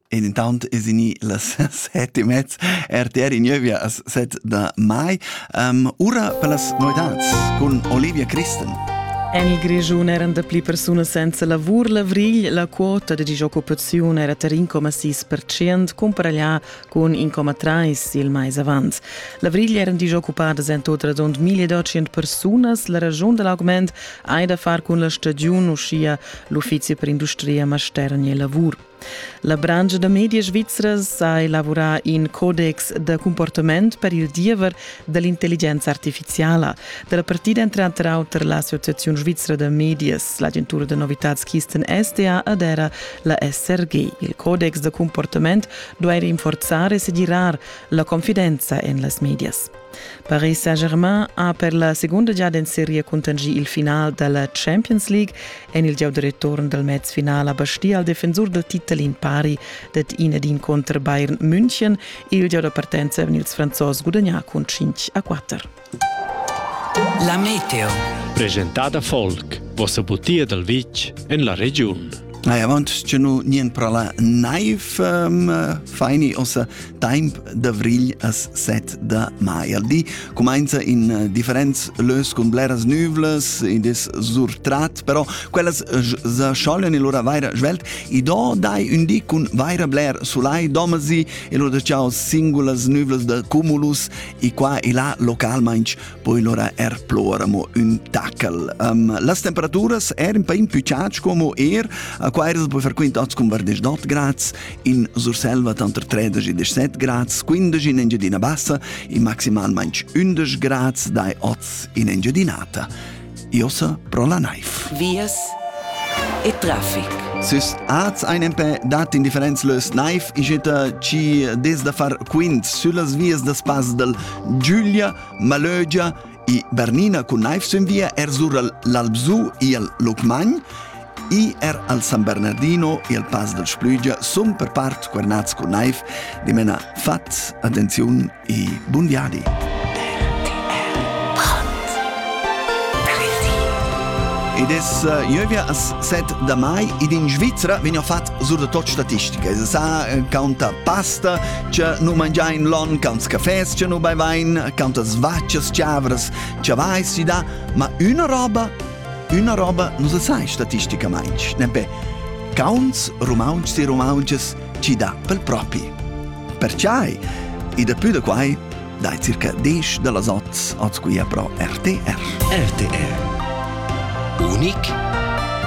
E intant es gnü las set e mez. RTR in gnövia as set da mai. Um, ura per las novedats cun Olivia Christen. En il Grischun eran dapli persunas senza lavur l'avrigl. La quota da disoccupaziun era tar 1,6%, cumparaglià cun 1,3% il mais avant. L'avrigl eran disoccupadas en tot radund 1200 persunas. La ragiun da l'augment hai da far cun la stagiun, uschia l'uffizi per industria, mastergn e lavur. La brangia da media svizra ha elavorà in codex da comportament per il diever da l'intelligenza artificiala. Da la partida entre auter auter l'Associazione Svizra da Medias, l'agentura da novitads Kisten SDA ed era la SRG. Il codex da comportament duai rinforzare e segirar la confidenza en las medias. Paris Saint-Germain ha per la segunda giada en seria contingì il final da la Champions League en il gieu da return dal mezfinal a Bastia al defensur dal titel in pari dad in ed in contr Bayern München. Il gieu da partenza han ils Franzos gudagnà cun 5 a 4. La Meteo. Presentada Folk, vossa butia dal vitg en la regiun. Nei, avant che nu nien prala naiv um, faini ossa Temp d'avrigl as set da maieldi cumainza in eh, differents lös cun bleras nüvlas, id es surtrat, però quellas s'schoglian e lura vaira svelt. I do dai ün di cun vaira bler sulai domasi e lura ciao singulas nüvlas da cumulus e qua e là localmainch poi lura er plora mo ün tacal. Um, las temperaturas er in pain più ciac como er, qua er poi frequent ots cun 28 grads In Surselva tanter 13 e 17 grads, 15 in Engiadina Bassa e maximalmain 11 grads dai oz in Engiadinata. Iossa pro la naiv. Vias e traffic. Sys az ein empè dat in differenz lös naif ischeta ci des da far quint süllas vias da spas dal Giulia, Malögia I Bernina cun naiv sünvia er sur l'Albsu i al Lucmagn, i er al San Bernardino i al Pass del Splügia sun per part guarnats cun naiv, dimena fat, attenziun e bun viadi. Ed es uh, ieuvia as set da mai ed in Svizzera vegn fatg sur da tot statistica. Se sa eh, canta pasta, che nu mangiain lon, cantas cafés che nu bevein, cantas vaccias chavras che vai si da, ma una roba, una roba nu se sai statisticamente, nempe Caunts rumauntschs e rumauntschas ci da pel propi. Perciai, e da più da quai, dai circa 10 da las 8 oz qui pro RTR. RTR. Unic